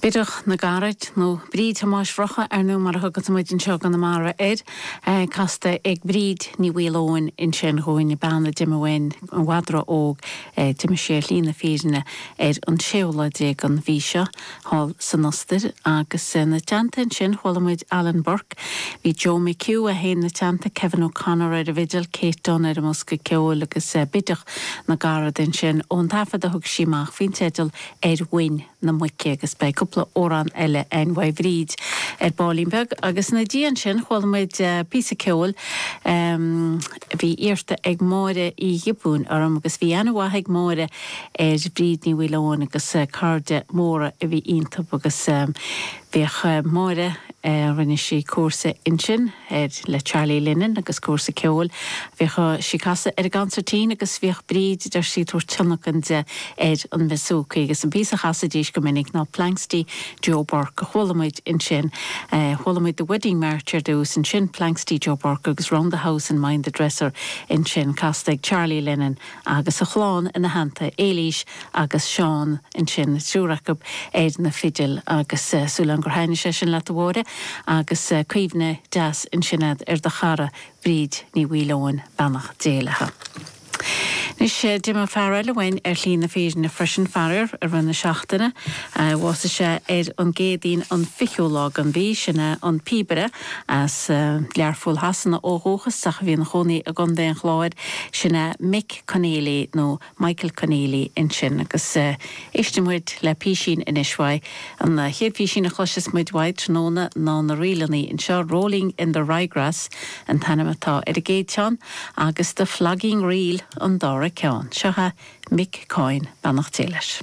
Bideach na gCarad, nó Bríd Thomáis Mhurchadha ar ndóigh mar a thugann muid anseo i gConamara air, casta ag Bríd Ní Mhaoileoin, ansin dhúinn, bean a d'imigh uainn i bhfad ró-óg, d'imigh sí ar shlí na fírinne ar an séú lá déag den mhí seo. thall san Ostair agus ina teannta ansin chuala muid Alan Burke, bhí Joe McHugh ann ina teannta, Kevin O'Connor ar an bhfidil, Kate Dunne ar an mbosca ceoil agus Bideach na gCarad ansin ón taifead a thug sí amach faoin teideal Ar Mhuin na Muice agus beidh cúpla amhrán eile a'inn uaidh Bhríd ar ballín beag agus ina diaidh ansin chuala muid píosa ceoil Bhí iarrta ag Máire Uí Ghiobúin orm agus bhí aithne mhaith ag Máire ar Bhríd Ní Mhaoileoin agus cairde móra a bhí iontub agus bhíodh Máire, rinne sí cúrsa ansin le Charlie Lennon agus cúrsa ceoil, bhíodh sí ag casadh ar an gconsairtín agus bhíodh Bríd, deir sí, tabhairt tionlacan di ar an mbúsúcaí agus an píosa a chasaidís go minic ná Planxty Joe Burke a chuala muid ansin. Chuala muid The Wedding March ar dtús, ansin Planxty Joe Burke agus Round the House and Mind the Dresser ansin, casta ag Charlie Lennon agus a chlann ina theannta, Éilís agus Seán ansin, an triúr acu ar na fidil. Agus súil a'm gur thaitnigh sé sin leat a Mháire, agus cuimhne deas ansin agat ar do chara Bríd Ní Mhaoileoin, beannacht Dé léithe. Anois, d'imigh fear eile uainn ar shlí na fírinne freisin, faraor, i rith na seachtaine. Bhásaigh sé ar an gCéadaoin, an fichiú lá den mhí, sin é, an píobaire. As Learpholl Shasana ó dhúchas, ach a bhí ina chónaí i gContae an Chláir, sin é Mick Conneely, nó Michael Conneely ansin. Agus éistfidh muid le písín anois uaidh. An chéad phísín a chloisfeas muid uaidh tráthnóna ná na ríleannaí anseo, Rolling in the Ryegrass an t-ainm atá ar an gcéad cheann. Agus The Flogging Reel an dara ceann. Seo é Mick Coyne, beannacht Dé leis.